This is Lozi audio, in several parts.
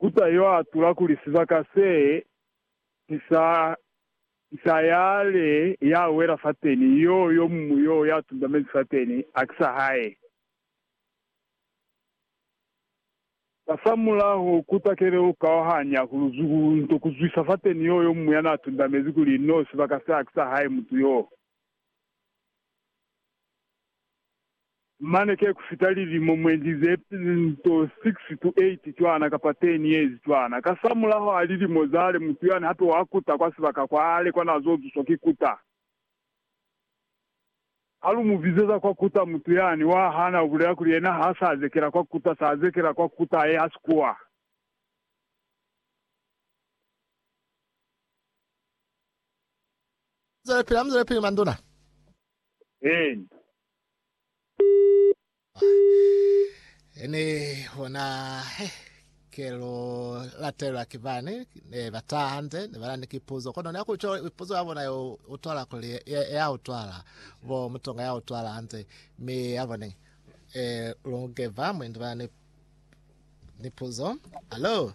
Mufuta yo atula kuli sibaka se ki sa Isilaele ya wela fateni, yo yo muñwi yo ya tundamezi fateni, ha ki sa hae. Kasamulaho ku takele ku kauhanya ku luzuku nto ku zwisa fateni yo yo muñwi ya na tundamezi kuli no sibaka se ha ki sa hae mutu yoo. Mane ke ku fita lilimo mwendi ze nto 6 to 8 cwana kapa 10 years cwana. Kasamulaho ha lilimo zale, mutu yani hape wa kuta kwa sibaka kwale kwa na zo zuswa ki kuta. Ha lu mu bizeza kwa kuta, mutu yani wa hana, u bulela kuli yena ha sa zekela kwa kuta, sa zekela kwa kuta ye ha si kuwa. Zwelepili, Amuzelepili manduna. Eena. Ene hona he kelo latelwa ki bani ne ba taha hande ne bana ni kipuzo kono ne kuco ipuzo ya bona yo utwala kuli ya, ya utwala bo mutonga ya utwala hande mi ya bone eh lungeva mwendi bana ni ni puzo alo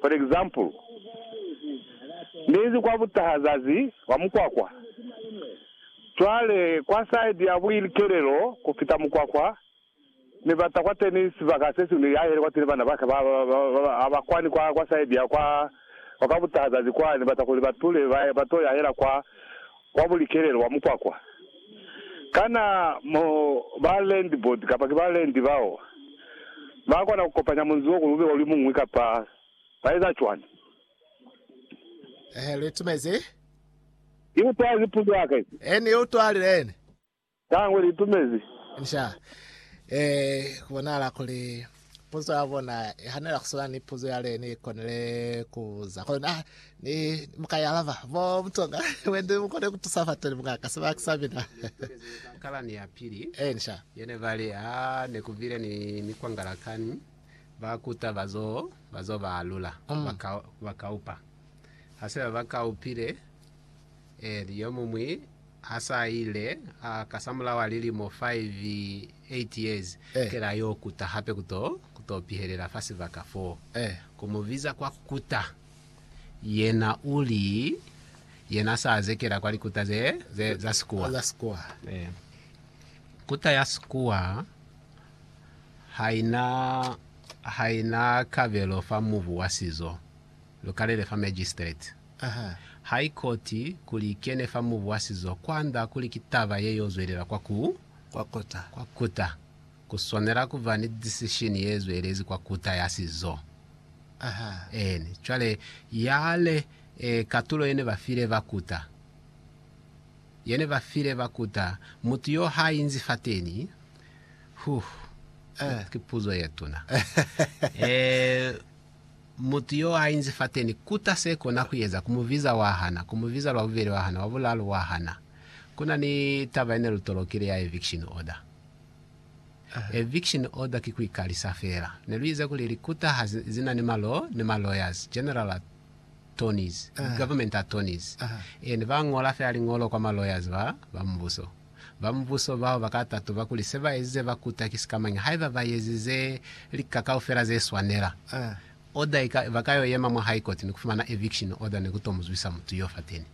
For example, Niinzi kwa butaha zazi wa mukwakwa. Cwale, kwa side ya buikelelo ku fita mukwakwa, Ni bata kwateni sibaka sesiñwi ni yahele kwateni bana baka ba, ba, ba, ha ba kwani kwa, kwa side ya kwa, kwa butaha zazi kwa, Ni bata kuli batule ba, ba to yahela kwa. Kwa bulikelelo bwa mukwakwa, kana mo ba land board kapa ki ba land bao ba kona ku kopanya munzi wo kulube oli muñwi kapa ba eza cwani? Ehe, lu itumezi. Ki utwali puzo yaka ye. Ee, ni utwalile. Litangwa li tumezi. Inca e kubonahala kuli puzo ya bona ihanela kuswana ni puzo yale ni konile kubuza. Kono na ni mukaialaba bo butonga bwende bukone kutusa fateni mukaka sebaya ku Sabina. Kalani ya pili Inca. yene bali, Ha ne kubile ni mikwangala kani, ba kuta bazo bazo ba alula, ba ka ba kaupa. Hase ba ba kaupile, e li yomumwi. Ha sa ile a kasamulaho a lilimo 5, 8 years, kele a y'o kuta hape ku to, ku to pihelela fa sibaka fo. Ku mu biza kwa ku kuta. Yena u li, Yena sa zekela kwa likuta ze, ze, za Sikuwa. Kuta ya Sikuwa ha i na, ha i na kabelo fa mubu wa sizo. Lu kalele fa magistrate, high court, kuli i kene fa mubu wa sizo kwand'a kuli ki taba ye y'o zwelela kwa ku, kwa kuta. Ku swanela ku ba ni decision ye zwelezi kwa kuta ya sizo. Eeni. Cwale, yale, e, katulo ye ne ba file ba kuta, ye ne ba file ba kuta, mutu y'o h'a inzi fateni, huh, ki, ki puzo ye tuna. E. Mutu yo a inzi fateni kuta se kona ku eza, ku mu biza wa hana, ku mu biza lwa bubeli wa hana, wa bulalu wa hana. Kuna ni taba yene lu tolokile ya eviction order. Eviction order ki ku ikalisa fela. Ne lu ize kuli likuta ha zi na ni ma law ni ma lawyers, general attorneys, government attorneys, and ba ngola fela liñolo kwa ma lawyers ba, ba mubuso. Ba mubuso bao ba ka tatuba kuli se ba ezize ba kuta ki sikamañi haiba ba ezize lika kaufela ze swanela. Order i ka, ba ka yo yema mwa High Court ni ku fumana eviction order ni ku to mu zwisa mutu yo fateni.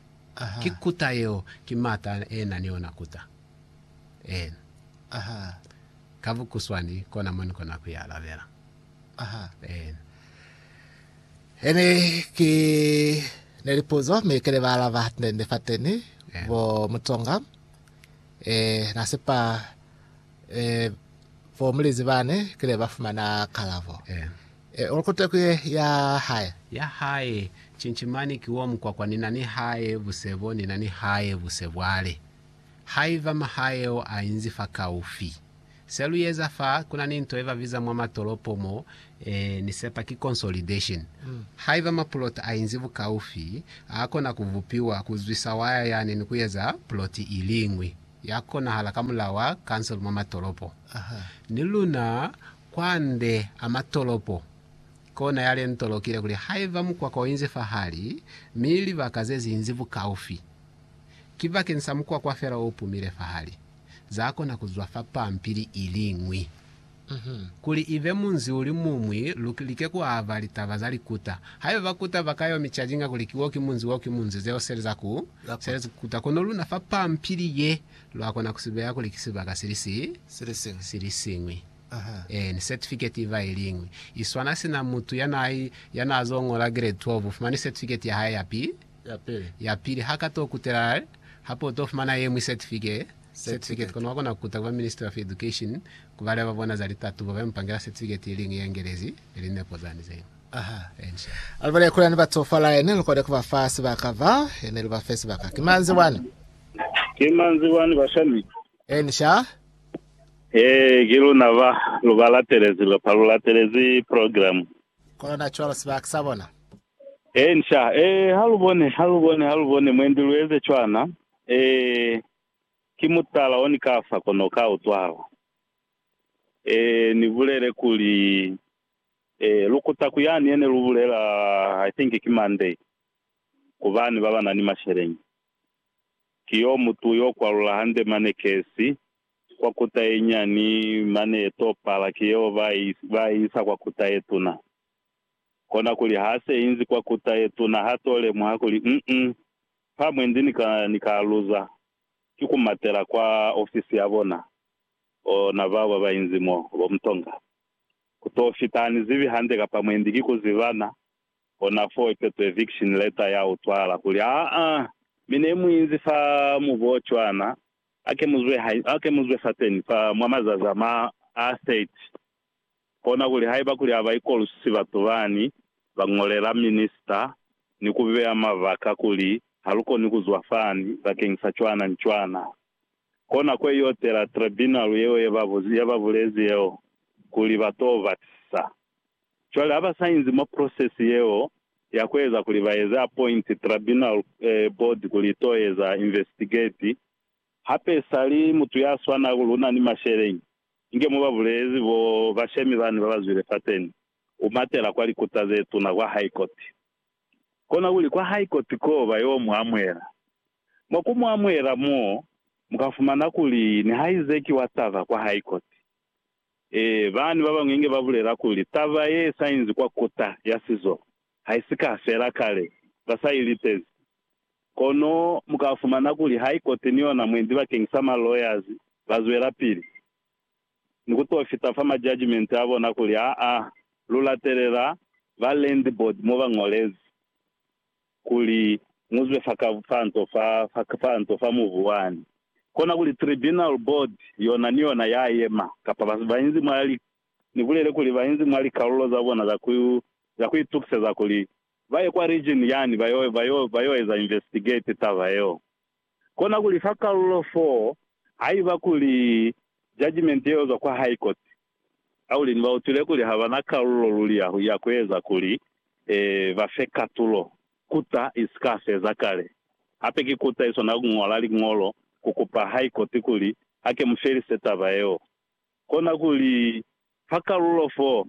Ki kuta yeo, ki m'ata e na ni ona kuta. Eena. Ka bukuswani, kona mo ni kona ku i alabela. Aha. Eena. Ene ki ne lipuzo mi kene ba alaba hatendende fateni Eena. bo Mutsonga. Eh, na sepa eh, bo mulizi bane kile ba fumana kalabo. Eena. Eh, uli kute kuye ya hae. Ya hae, Chinchimani ki wo mukwakwa ni na ni hae buse bo ni na ni hae buse bwale. Haiba mahae ao a inzi fa kaufi, Se lu eza fa, ku na ni nto ye ba biza mwa matolopo mo, e, ni sepa ki consolidation. Haiba mapuloti a inzi bukaufi, a kona ku bupiwa, ku zwisa waya yani ni ku eza puloti i liñwi, ya konahala ka mulao wa kansele mwa matolopo. Ni luna, kwande a matolopo, kona ya le ntolokile kuli haiba mukwakwa u inzi fahali, mi libaka ze zi inzi bukaufi, ki bakeni sa mukwakwa fela o pumile fahali. za kona ku zwa fa pampili i liñwi. Kuli i be munzi u li muñwi, lu like ku aba litaba za likuta. Haiba bakuta ba ka yo mi cajinga kuli ki wo ki munzi, wo ki munzi, zeo se li za ku sebeza ku kuta. Kono luna fa pampili ye, lwa kona ku si beya kuli ki sibaka si li si, si li siñwi. Ee, ni setifiketi iba i liñwi. I swana sina mutu ya na, ya na zo ñola grade 12, u fumani setifiketi ya hae ya pi, Yapili, ha ka to kutela hape u to fumana yeñwi certificate kono wa kona ku kuta ku ba Ministry of Education ku baleba ba bona za litatubo ba yo mu pangela certificate ye liñwi ye Ngelezi ne linepo zani ze ñwi. Ha lu bala kuli hane ba tsofala he ne lu koni ku ba fa sibaka fa he ne lu ba fe sibaka. Ki manzi wani? Ki manzi wani bashemi? Ee, ki luna ba lu ba latelezi, lu latelezi program. Kono na cwalo sibaka sa bona. Ee, nca. Ee, ha lu bone, ha lu bone, ha lu bone, mwendi lu eze cwana. Ee, ki mutala oni kafa kono ka utwala. Ee, ni bulele kuli, Ee, lu kuta ku yani yene lu bulela, I think ki Monday, ku bani baba na ni masheleñi. Ki yo mutu yo kwalula hande mane kesi, kwa kuta ye nyani, mane ye to pala, ki yeo ba i, ba i isa kwa kuta ye tuna. Kona kuli ha se inzi kwa kuta ye tuna ha to lemuha kuli, Uh-uh, fa mwe ndi ni ka, ni ka luza, ki ku matela kwa ofisi ya bona. Oh, na bao ba ba inzi mo, bo Mtonga. Ku to fita, ha ni zibi hande kapa mwe ndi ki ku zibana, kona foo ipe to eviction letter ya utwala kuli, Ha-a! Mi ne mu inzi fa mubu o cwana, hake mu zwe, hake mu zwe fateni fa mwa mazazi a ma, a 30. Kona kuli haiba kuli ha ba ikolwisi batu bani ba ñolela minista ni ku beya mabaka kuli ha lu koni ku zwa fani bakeng sa cwana ni cwana, ko nako ye y'o tela tribunal yeo ye ba ye ba bulezi yeo kuli ba t'o batisisa. Cwale ha ba sa inzi mwa process yeo ya ku eza kuli ba eze appoint tribunal eh, board kuli i t'o eza investigate, Hape sali mutu ya swana ku luna ni masheleñi, inge mo ba bulezi bo bashemi bani ba ba zwile fateni, u matela kwa likuta ze tuna, kwa High Court. Kona kuli kwa High Court ko ba yo mu amuela. Mwa ku mu amuela mo, mu ka fumana kuli nihaize ki wa taba kwa High Court. Ee, bani ba bañwi inge ba bulela kuli, Taba ye sa inzi kwa Kuta ya Sizolo. haisika fela kale ba sa i litezi. Kono mu ka fumana kuli ha i koti ni yona mwendi bakeng sa ma lawyers ba zwelapili ni ku to fita fa ma judgement a bona kuli aa lu latelela ba land board mo ba ngolezi kuli mu zwe fa ka fa nto fa fa nto fa mubu wani. Kona kuli tribunal board yona ni yona ya yema kapa ba ba inzi mwa li ni bulele kuli ba inzi mwa likalulo za bona za ku za ku itukiseza kuli ba ye kwa region yani ba yo ba yo ba yo eza investigate taba yeo. Kona kuli fa kalulo fo haiba kuli judgement yeo zwa kwa High Court, Aulini ba utwile kuli ha ba na kalulo luli ya ya ku eza kuli e ba fe katulo kuta i si ka feza kale. Hape ki kuta i swanela ku ñola liñolo ku kupa High Court kuli ha ke mu felise taba yeo. Kona kuli, ha kalulo fo,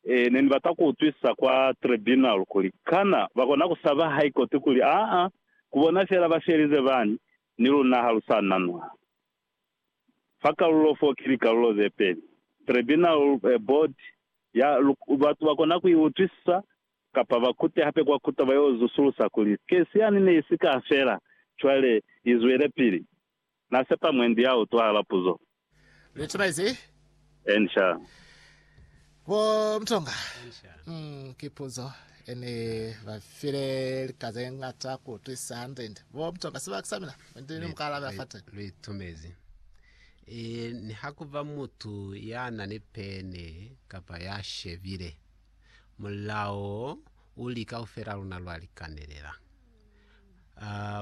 e, ne ni bata ku utwisisa kwa tribunal kuli, kana ba kona ku saba High Court kuli, aa, ku bona fela ba felize bani, ni luna ha lu sa na nwa. Fa kalulo fo ki likalulo ze peli, tribunal, e, board ya, lu, batu ba kona ku i utwisisa, kapa ba kute hape kwa kuta ba yo zusulusa kuli, case yani ne i si ka fela, cwale i zwelepili. Na sepa mwendi ya utwahala puzo. Lutheranize. Eni sha. Bo Mtonga. Eni sha. Umm ki puzo. Eni ba file lika ze ngata ku utwisa hande ndi. Bo Mtonga sibaka sa mina. Mwendi ni muka alabela fate. Luitumezi. E ni ha ku ba mutu ya na ni pene kapa ya shebile. Mulao u li kaufela luna lwa likanelela.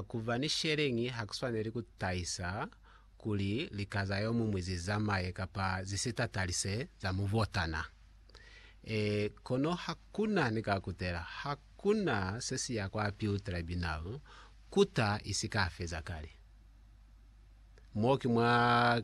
Ku ba ni sheleñi ha ku swaneli ku tahisa kuli lika za yo muñwi zi zamaye kapa zi si tatalise za mubotana. Kono ha ku na ni ka kutela, ha ku na se si ya kwa Appeal Tribunal kuta i si ka feza kale. Mo ki mwa